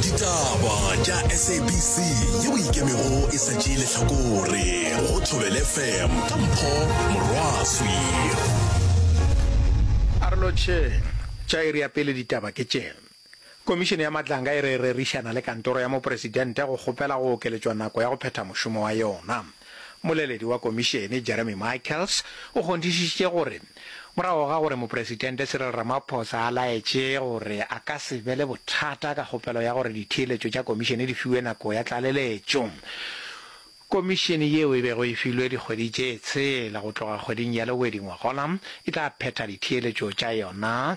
ditaba tša sabc yeo e ikemego e sa tšee lehlakore go thobele fm ka mpho morwaswi a re lotšheng tša iri ya pele ditaba ke tše komišene ya matlanga e re e rerišana le kantoro ya mopresidente go kgopela go okeletšwa nako ya go phetha mošomo wa yona Moleledi wa Komišene, Jeremy Michaels, o kgonthišišitše gore morago ga gore Mopresitente Cyril Ramaphosa a laetše gore a ka se be le bothata ka kgopelo ya gore ditheeletšo tša Komišene di fiwe nako ya tlaleletšo, Komišene yeo e bego e filwe dikgwedi tše tshela go tloga kgweding ya Lowedi ngwagona e tla phetha ditheeletšo tša yona.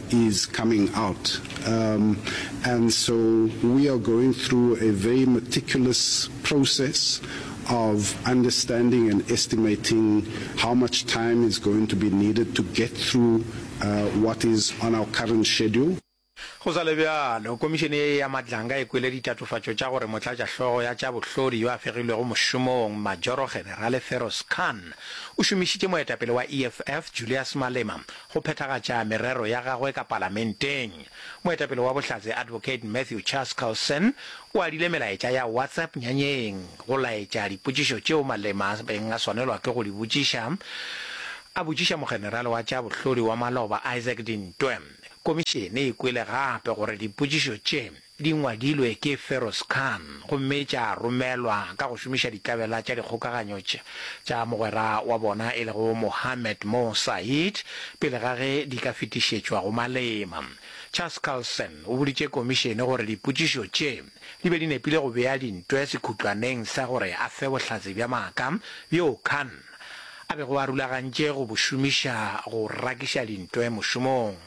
is coming out um, and so we are going through a very meticulous process of understanding and estimating how much time is going to be needed to get through uh, what is on our current schedule. Go sa le bjalo, komišene ye ya Madlanga e kwele ditatofatšo tša gore motlatšahlogo ya tša bohlodi yo a fegilwego mošomong Majoro Generale Feroz Khan o šomišitše moetapele wa EFF Julius Malema go phethagatša merero ya gagwe ka palamenteng. Moetapele wa Bohlatse Advocate Matthew Charles Carlson o adile melaetša ya WhatsApp nyanyeng go laetša dipotšišo tšeo Malema a beng a swanelwa ke go di botšiša a botšiša mogenerale wa tša bohlodi wa maloba Isaac Dintwe. Komišene e kwele gape gore dipotšišo tše Di ngwadilwe ke Feroz Khan gomme tša romelwa ka go šomiša ditlabela tša dikgokaganyo tša mogwera wa bona e lego Mohammed Mo Saeed pele ga ge di ka fetišetšwa go malema. Charles Colson o boditše komišene gore dipotšišo tše di be di nepile go bea dintwe sekhutlwaneng sa gore a fe bohlatse bja maaka bjoo Khan a bego a rulagantše go bo šomiša go rakiša dintwe mošomong.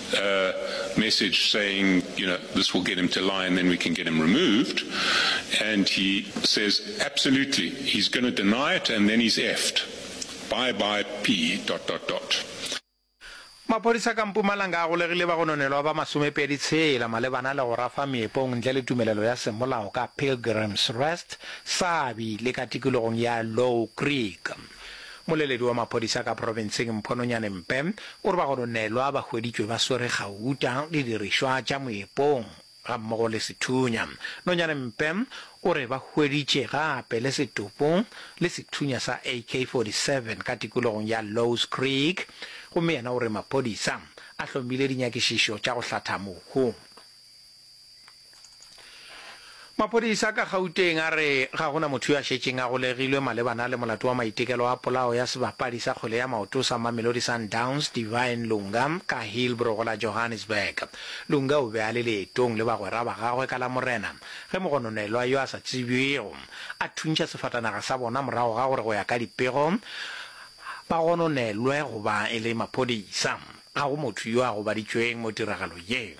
a message saying you know this will get him to lie and then we can get him removed and he says absolutely he's going to deny it and then he's effed bye bye p dot dot dot Maphodisa ka Mpumalanga a golegile bagononelwa ba masomepedi tshela malebana le go rafa meepong ntle le tumelelo ya semolao ka Pilgrims Rest, Sabi le ka tikologong ya Low Creek. Moleledi wa maphodisa ka profenseng Mphononyane Mpe o re bagononelwa ba hweditšwe ba swere gauta, didirišwa tša moepong gammogo le sethunya. Nonyane Mpe o re ba hweditše gape le setopo le sethunya sa AK 47 ka tikologong ya Lowe's Creek gomme yena o re maphodisa a hlomile dinyakišišo tša go hlatha mohu. Maphodisa ka Gauteng a re ga go na motho yo a šetšeng a golegilwe malebana le molato wa maitekelo a polao ya sebapadi sa kgwele ya maoto sa Mamelodi Sundowns Divine Lunga ka Hillbrow la Johannesburg. Lunga o be a le leetong le bagwera ba gagwe ka Lamorena ge mogononelwa yo a sa tsebjwego a thuntšha sefatanaga sa bona morago ga gore go ya ka dipego ba gononelwe go ba e le maphodisa. Ga go motho yo a gobaditšweng mo tiragalo ye.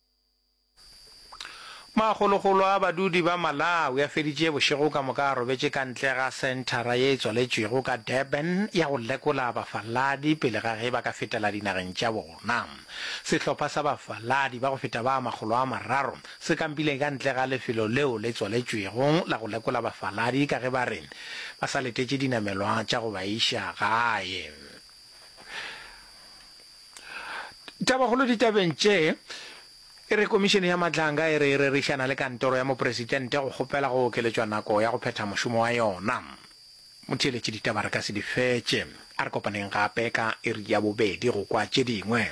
Makgolokgolo a badudi ba Malawi a feditše bošego ka moka a robetše ka ntle ga senthara ye e tswaletšwego ka Durban ya go lekola bafaladi pele ga ge ba ka fetela dinageng tša bona. Sehlopha sa bafaladi ba go feta ba makgolo a mararo se kampile ka ntle ga lefelo leo le tswaletšwego la go lekola bafaladi ka ge ba re ba sa letetše dinamelwa tša go ba iša gae. Tabakgolo ditabeng tše e re komišene ya matlanga e re e rerišana le kantoro ya mopresidente go kgopela go okeletšwa nako ya go phetha mošomo wa yona. Motheeletši ditaba re ka se di fetše. A re kopaneng gape ka iri ya bobedi go kwa tše dingwe.